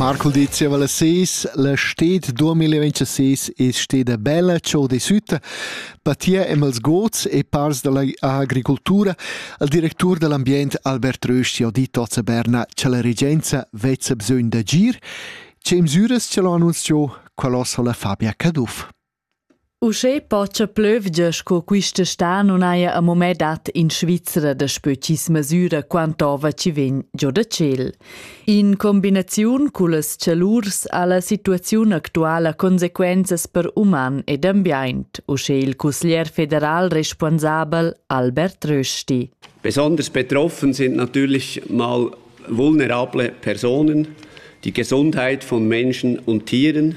Marcul di zieva las ses, la sted 2026 es steda bella ciò di sütta, patia emels gods e pars da la agricultura, al directur da l'ambient Albert Rösti ho dit hoz a Berna cha la regenza vezza bisögn d'agir. Che misüras ch'el ho annunzchà, qual hoz ho la Fabia Caduff. Uschè pocha plövgia sco quista stà nun haja amo mê dat in Svizra daspö chi's masüra quant'ova chi vegn giò da tschel. In combinaziun cullas chalurs ha la situaziun actuala consequenzas per uman ed ambiaint, uschè il cusglier federal responsabel Albert Rösti. Besonders betroffen sind natürlich mal vulnerable Personen, die Gesundheit von Menschen und Tieren,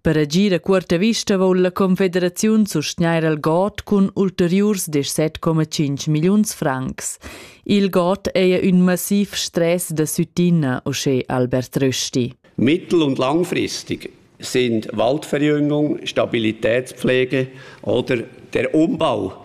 Per agir a cuorta vista voul la Confederaziun sustgnair al God cun ulteriurs 17,5 milliuns francs. Il God ei ün massiv stress da süttina, uschè Albert Rösti. Mittel- und langfristig sind Waldverjüngung, Stabilitätspflege oder der Umbau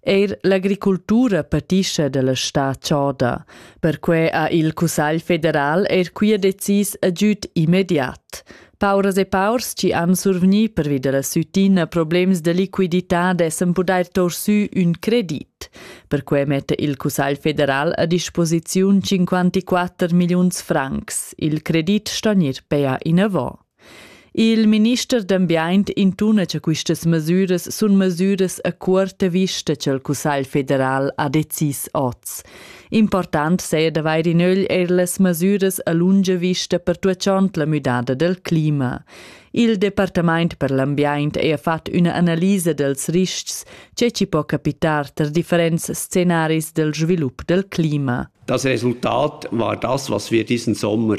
Eir l'agricultura patischa dalla stà choda. Perquai ha il Cussagl federal eir quia decis agüd immediat. Pauras e paurs chi han survgni pervi dalla sütina problems da liquidità dessan pudair tor sü ün credit. Perquai metta il Cussagl federal a disposiziun 54 milliuns francs. Il credit sto gnir pea inavant. Il minister d'ambient intuna che questas mesüras sun mesüras a cuorta vista cha'l Cussagl federal ha decis hoz. Important saja d'avair in ögl eir las mesüras a lunga vista pertuachond la müdada del clima. Il Departamaint per l'ambiaint ha fat üna analisa dels riscs che ci po capitar ter differents scenaris del svilup del clima. Das Resultat war das, was wir diesen Sommer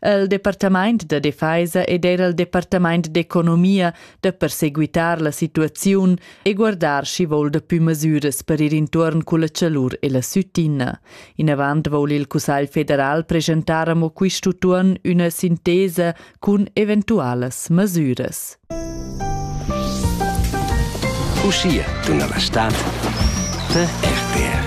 El departamaint da defeisa ed era il departamaint d'economia da perseguitar la situaziun e guardar schi voul dapü masüras per ir intuorn culla chalur e la süttina. Inavant voul il Cussagl federal presentar amo quist'utuon üna sintesa cun eventualas masüras. Uscia, dunna la stad, per RTR.